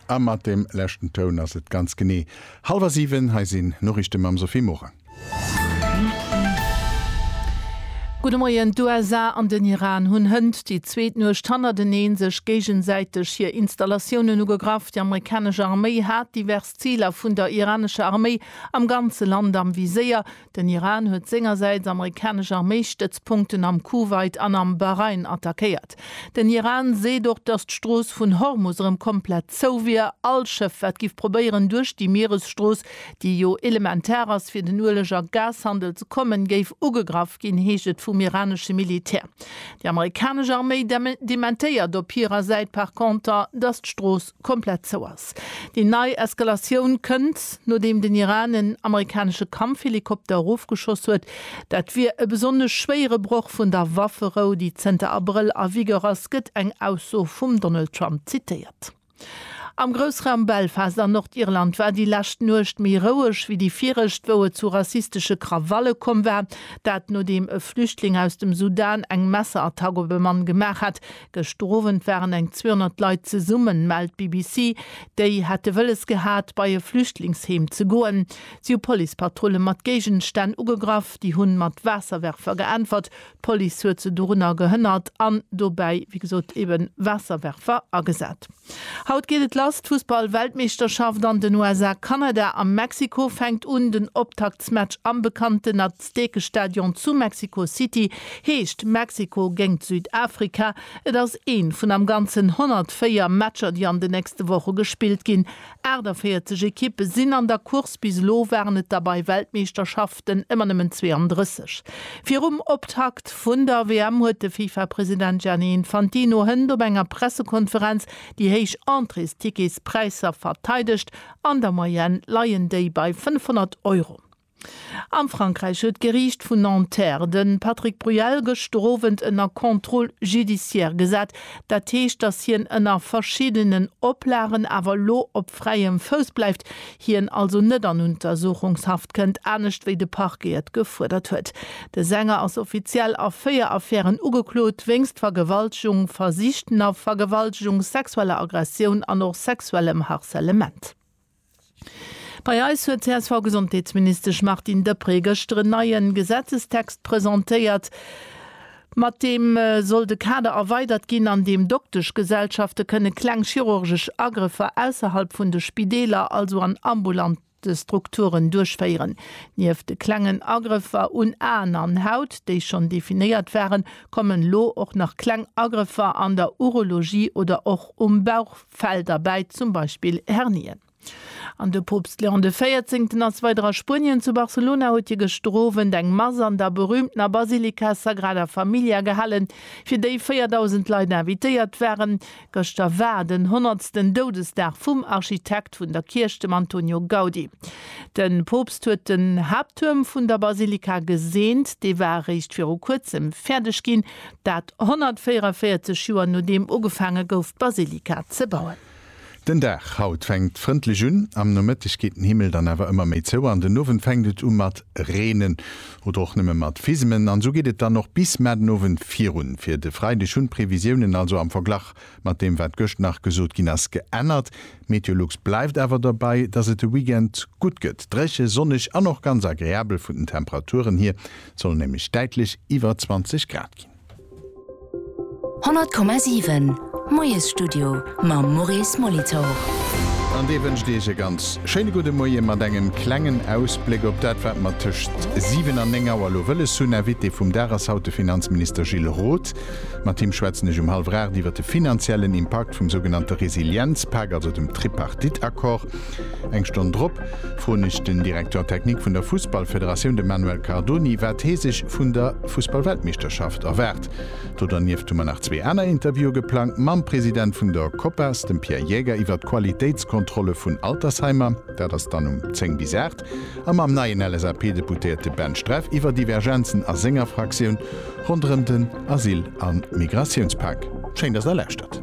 A mat deem leschten Toun ass et ganz genee hallwer 7. Hei sinn d'Noriichte mam Sophie Morang. Gudde Moien, D'USA an den Iran hunn hënt déi zweet Nuecht hannerteneen sech géigesäiteg hir Installatiounen ugegraff. Déi amerikanesch Arméi hat divers Ziler vun der iranescher Arméi am ganze Land am Viséier. Den Iran huet sengersäits amerikanesch Arméistëtzpunkten am Kuwait an am Bahrain attackéiert. Den Iran seet och, datt d'Strooss vun Hormus erëm komplett zou wier. All Schëff, wat giff probéieren, duerch déi Mieresstrooss, déi jo elementar ass, fir den Ueleg a Gashandel ze kommen, géif ugegraff ginn, heescht et vum iranesche Militär. Déi amerikanesch Arméi dementéiert op hirer Säit par conter, datt d'Strooss komplett zou ass. Déi nei Eskalatioun kënnt, nodeem den Iran en amerikanesche Kampfhelikopter erofgeschoss huet. Dat wier e besonnesch schwéiere Broch vun der Wafferou, déi zënter Abrëll a Vigueur ass, gëtt eng Ausso vum Donald Trump zitéiert. Am Groussraum Belfast an Nordirland war déi lescht Nuecht méi roueg wéi déi viregt, wou et zu rassistesche Krawalle komm war. Dat nodeem e Flüchtling aus dem Sudan eng Messerattack op e Mann gemaach hat, Gëschter Owend waren eng 200 Leit zesummen, mellt d'BBC. Déi hätte wëlles gehat, bei e Flüchtlingsheem ze goen. Si hu Policepatrulle mat Géigenstänn ugegraff. Déi hunn mat Waasserwerfer geäntwert. D'Police huet se dorunner gehënnert an dobäi, wéi gesot, ebe Waasserwerfer agesat. Haut geet et lass, d'Fussball-Weltmeeschterschaft an den USA, Kanada a Mexiko fänkt un. Den Optaktsmatch am bekannten Aztekestadion zu Mexico City heescht Mexiko géingt Südafrika. Et ass ee vun am Ganzen 104 Matcher, déi an den nächste Woche gespillt ginn. 48 Ekippe sinn an der Course, bis elo waren et der bei Weltmeeschterschaften. Mannschaften ëmmer nëmmen 32. Virum Optakt vun der WM huet de FIFA-President Gianni Infantino Hënt op enger Pressekonferenz déi héich Entréesticketspräisser verteidegt. An der Moyenne leien déi bei 500 Euro. A Frankräich huet d'Geriicht vun Nanterre de Patrick Bruyel gëschter Owend ënner Contrôle judiciaire gesat. Dat heescht, datt hien ënner verschiddenen Oplagen awer elo op fräiem Fouss bleift. hien also net an Untersuchungshaft kënnt, anescht wéi de Parquet et gefuerdert huet. De Sänger ass offiziell a véier Affären ugeklot, wéinst Vergewaltegung, versichtener Vergewaltegung, sexueller Aggressioun an och sexuellem Harcèlement. Bei eis huet d'CSV-Gesondheetsministesch Martine Deprez gëschter en neie Gesetzestext presentéiert. Mat deem soll de Kader erweidert ginn, an deem Dokteschgesellschafte kënne kleng chirurgesch Agrëffer ausserhalb vun de Spideeler, also an ambulante Strukturen, duerchféieren. Nieft de klengen Agrëffer un Aen an Haut, déi schonn definéiert waren, kommen elo och nach kleng Agrëffer an der Urologie oder och um Bauchfell derbäi, zum Beispill Hernien. An de Poopst Léon de Véierzéngten ass weider a Spuenien. Zu Barcelona huet hie gëschter Owend eng Mass an der berüümtener Basilika Sagrada Familia gehalen, fir déi 4.000 Leit invitéiert waren. Gëschter war den honnertsten Doudesdag vum Architekt vun der Kierch, dem Antonio Gaudi. De Poopst huet den Haapttuerm vun der Basilika geseent. Dee war eréischt viru kuerzem fäerdeg ginn, dat 144 Joer nodeem ugefaange gouf d'Basilika ze bauen. Den Dag haut fänkt frëndlech un. Am Nomëtteg geet den Himmel dann awer ëmmer méi zou an den Owend fänkt et u mat reenen oder och nëmme mat Fisemen an esou geet et dann och bis mar den Owend virun. Fir de Freideg hunn d'Previsiounen also am Verglach mat deem wat gëscht nach gesot ginn ass geännert. Meteolux bleift awer dobäi, dass et de Weekend gutt gëtt, dréche, sonneg an och ganz agreabel. Vun den Temperaturen hier soll et nämlech däitlech iwwer 20 Grad ginn. 100,7 Moiesstudio mam Maurice Molitor. An dee wënscht Iech e ganz schéine gudde Moie mat engem klengen Ausbléck op dat, wat mer tëscht 7 an 9 Auer elo wëlles hunn. Invité vum Dag ass haut de Finanzminister Gilles Roth. Mat him schwätzen ech um hallwer 8 iwwer de finanziellen Impakt vum sougenannte Resilienzpak, also dem Tripartite-Accord. Eng Stonn drop froen ech den Directeur technique vun der Fussballfederatioun, de Manuel Cardoni, wat hee sech vun der Fussballweltmeeschterschaft erwaart. Do dernieft hu mer nach zwee aner Interviewe geplangt, mam President vun der Copas, dem Pierre Jäger, iwwer d'Qualitéitskontrolle vun Altersheimer, dat ass dann um 10 bis 8, a mam neien LSAP-Deputéierte Ben Streff iwwer Divergenzen a senger Fraktioun ronderëm den Asyl a Migratiounspak. Schéin, dass der lauschtert.